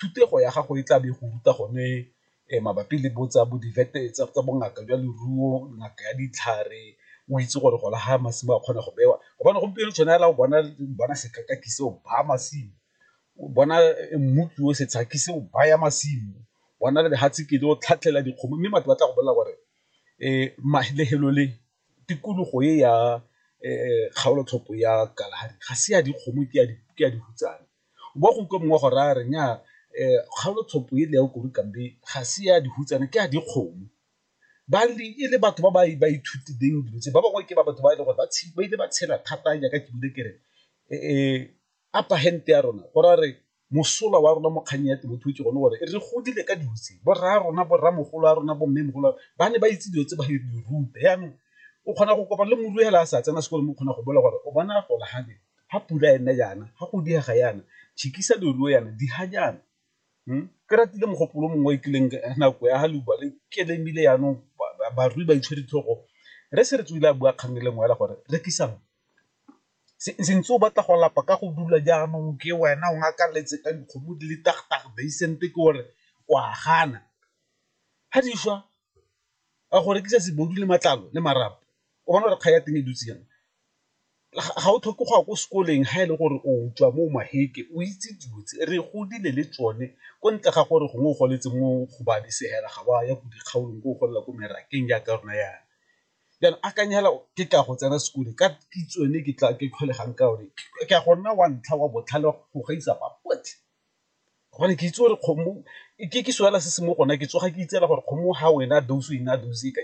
thutego ya gago e tla be go ruta gone mabapi le bo tsa bongaka jwa leruo, ngaka ya ditlhare o itse gore gona ga masimo a kgona go bewa gobane gompieno tshwana fela o bona bona sekai se o baya masimo, o bona mmu ke o setsha ke se o baya masimo, bona le lefatshe ke le o tlhatlhela dikgomo mme batho ba tla go bolelela gore tikologo e ya kgaolo tlhopho ya Kalahari ga se ya dikgomo ke ya dihutsana. Wa go utlwa mongwe wa go raya a re, Nnyaa, kgaolotshopo ele ya Ukuru Kambe ga se ya dihutsana, ke ya dikgomo. Ba ne e le batho ba ba ithutileng dilo tse, ba bangwe ke ba batho ba e leng gore ba ile ba tshela thata jaaka ke buile ke re upper hand ya rona go raya re mosola wa rona mo kgannyeng ya temothuo ke gone gore re godile ka dilo tse, bo rra rona, bo rramogolo ba rona, bo mmemogolo ba ne ba itse dilo tse ba re di ruta jaanong o kgona go kopana le morui fela a sa tsena sekolo mme o kgona go bolela gore o bona a golagale ga pula e ne yana, ga go diega yana, tšhikisa leruo yana, diga jaana. Ke ratile mogopolo o mongwe o kileng ka nako ya leuba le ke le ebile yanong barui ba itshwere ditlhogo re se re tswile a bua kgang e le nngwe fela gore rekisang, se ntse o batla go lapa ka go dula jaanong ke wena o ngakaletse ka dikgomo di le tag tag basent ke gore o a gana, ga di swa a go rekisa le matlalo le marapo o bona gore kgang ya teng e dutse jang, ga o tlhoke go ya ko sekoleng ga e le gore o tswa mo Maheke o itse dilo tse re godile le tsone ko ntle ga gore gongwe o goletse mo go ba di segela ga wa ya ko dikgaolong ko o golela ko merakeng jaaka rona yana. Jaanong akanya fela ke tla go tsena sekolo ka kitso eno e ke tlholegang ka yone ke a go nna wa ntlha wa botlhale go gaisa ba botlhe. gobane ke itse gore kgomo ke seo fela se se mo gona ke tsoga ke itse gore kgomo ha o ena dose o ena dose ka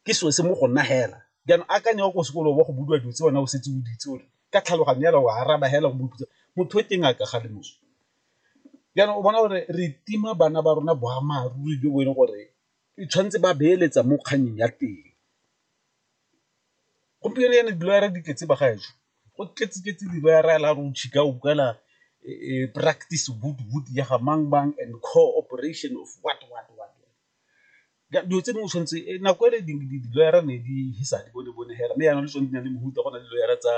ke seo se mo go nna fela jaanong akanya o ko sekolong wa go budiwa dilo tse wena o setse o di itse gore ka tlhaloganyo fela o araba fela o bopitsa motho o teng a ka ga le moso jaanong o bona gore re tima bana ba rona boammaaruri jo bo e leng gore e tshwanetse ba beeletsa mo kgannyeng ya teng. Gompieno jaana diloyara di tletse bagaetsho, go tletse tletse diloyara ya la re o chika o kwala practice boot boot ya ga mang mang and cooperation of what what what. Dilo tse dingwe o tshwanetse, nako e le diloyara ne di fisa di bone bone fela mme jaanong le tsone di na le mofuta go na le diloyara tsa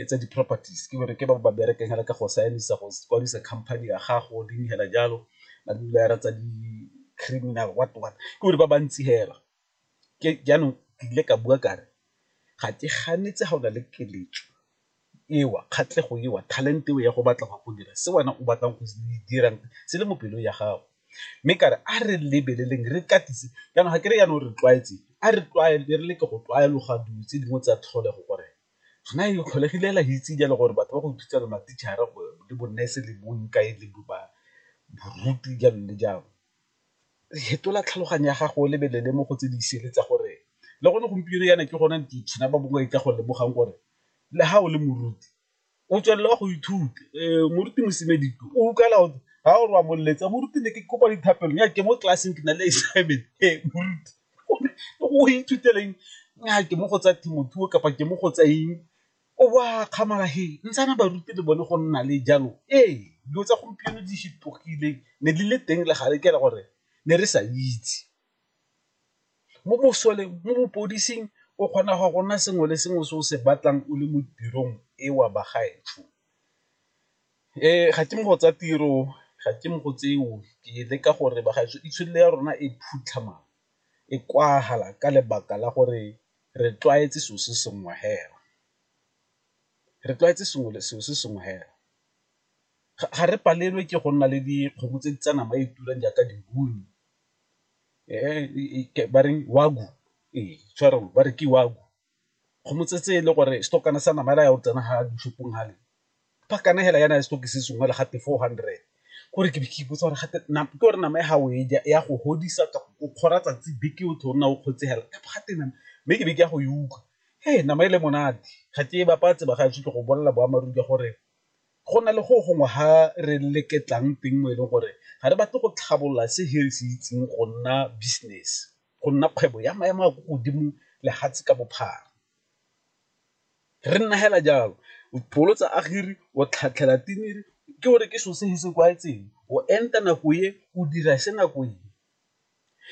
tsa di-properties ke gore ke ba ba berekang fela ka go saenisa go kwadisa company ya gago dingwe fela jalo, ba diloyara tsa di-criminal what what ke gore ba bantsi fela. jaanong ke ile ka bua kare ga ke ganetse ga o na le keletso eo, kgatlhego eo, talent eo ya go batla go ya go dira se wena o batlang go se dirang se le mo pelong ya gago. Mme ka re a re lebeleleng re katise jaanong ga ke re jaanong re tlwaetse a re tlwaele re leke go tlwaeloga dilo tse dingwe tsa tlholego gore gona e tlholegile fela re itse jalo gore batho ba go thusa bo ma-teacher-ra le bo nurse le bo jalo le jalo. fetola tlhaloganyo ya gago o lebelele mo go tse di sele tsa gore le gone gompieno yana ke gone ditšhina ba bangwe ka go lemogang gore le ga o le moruti o tswelela go ithuta moruti mosimedi o ukala o ga o re wa moletsa moruti ne ke kopa dithapelo nya ke mo tlelaseng ke na le assignment moruti o ithuteleng nya ke mo go tsa temothuo kapa ke mo go tsa eng O bo a akgamala he, ntshana baruti le bone go nna le jalo. Ee, dilo tsa gompieno di fetogile, ne di le teng le gale ke ra gore ne re sa itse. Mo mosoleng, mo bopodising o kgona go ya go nna sengwe le sengwe se o se batlang o le mo tirong e wa bagaetsho. Ga ke mo go tsa tiro, ga ke mo go tseo, ke leka gore bagaetsho itshwelele ya rona e phutlhama, e kwagala ka lebaka la gore Re tlwaetse selo se sengwe hela. Re tlwaetse selo se sengwe hela. Ga re palelwe ke go nna le dikgomo tse di tsa nama e e turang jaaka di-woo-u, ba reng wagyu, ee tshwarelo ba re ke wagyu, dikgomo tse e le gore setokwana sa nama fela ya go tsena fa dishopong fale. ba kana hela yana stock se sengwe le gate four hundred gore ke be ke ipotsa gore gate ke gore nama e ga o e ja ya go godisa ka o kgora tsatsi beke o thona o kgotse hela ka gate nama mme ke be ke ya go e utlwa he nama e le monate ga ke e bapatse ba ga ke go bolela boammaaruri ka gore go na le go gongwe ha re leketlang teng mo e leng gore ga re batle go tlhabolola se he se itseng go nna business go nna kgwebo ya maemo a ko godimo lefatshe ka bophara Re nna hela jalo o pholotsa agiri o tlhatlhela tiniri ke gore ke so se se kwaetseng o enta nako e o dira se nako e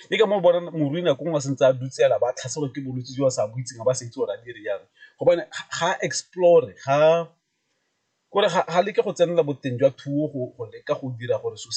ke ka moo bona morui nako ngwe sentse a dutsela ba tlhaselwa ke bolwetse jo ba sa bo itseng ba sa itse gore a dire jang gobane ga explore ga kore ga leke go tsenela boteng jwa thuo go leka go dira gore so se